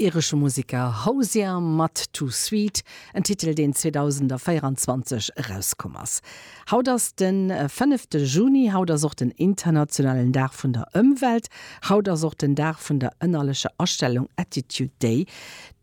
Iresche Museker Hozier mat Too Sweet, en Titel deen 2024 erauskomm ass. Haut ass de fënnefte Juni, haut ass och den internationalen Dag vun der Ëmwelt, haut ass och den Dag vun der ënnerlecher Astellung, Attitude Day.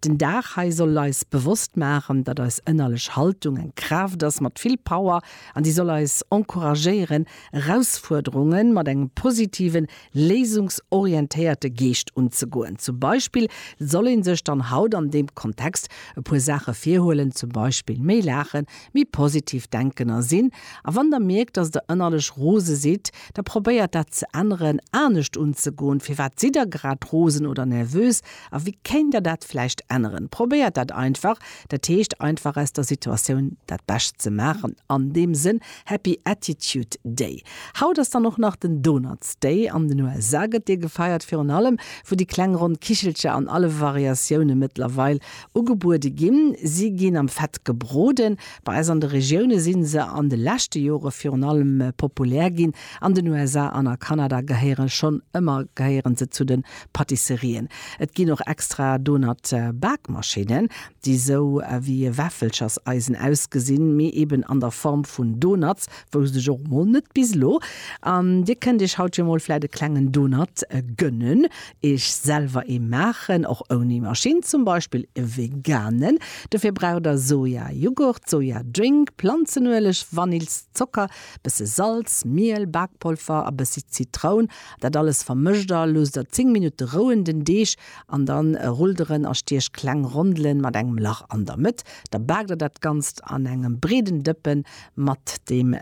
Den Dag hei soll eis bewosst maachen, datt eis ënnerlech Haltung eng Kraaft ass mat vill Power an déi soll eis encouragéieren Erausfuerderunge mat engem positiven, léisungsorientéierte Geescht unzegoen. Zum Beispill soll ee sech dann haut an deem Kontext e puer Saache virhuelen, zum Beispill méi laachen, méi positiv denken a sinn. A wann Der mierkt, dass Der ënnerlech rose sidd, da probéiert dat ze änneren, anescht unzegoen. Firwat sidd Der grad rosen oder nervös a wéi kéint Der dat vläicht änneren? Probéiert dat einfach, dat heescht einfach aus der Situatioun dat Bescht ze maachen an deem Sënn. Happy Attitude Day. Haut ass dann och nach den Donuts Day. An den USA gëtt dee gefeiert, virun allem wou déi kleng ronn Kichelcher an alle Variatioune mëttlerweil ugebuede ginn. Si ginn am Fett gebroden. Bei eis an de Regioune si se an de leschte Jore virun allem populär ginn. An den USA an a Kanada gehéiere schonn ëmmer gehéiere se zu de Patisserien. Et ginn och extra Donut-Bakmaschinnen. déi sou ewéi e Wäffelcherseisen ausgesinn, mee eben an der Form vun Donuts, wousst ech och mol net bis elo, an dir kënnt iech haut jo mol vläit e klengen Donut gönnen, iech selwer ee maachen, och ouni Maschinn, zum Beispill e veganen, dofir braucht der Sojajughurt, Sojadrink, Planzenueleg, Vanills, Zocker, bësse Salz, Miel, Bakpolver a bëssi Zitroun, dat alles vermëscht der, loosst der 10 Minutte rouen, den Deeg An dann rullt der en a stiech kleng Rondelen mat engem Lach an der Mëtt. Da baakt der dat Ganzt an engem breeden Dëppen mat dem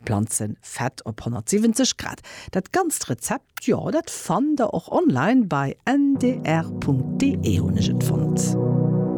Planzenfett op 170 Grad. Dat ganzt Rezept, jo, dat fannt der och online, bei ndr.de hunn ech et fonnt.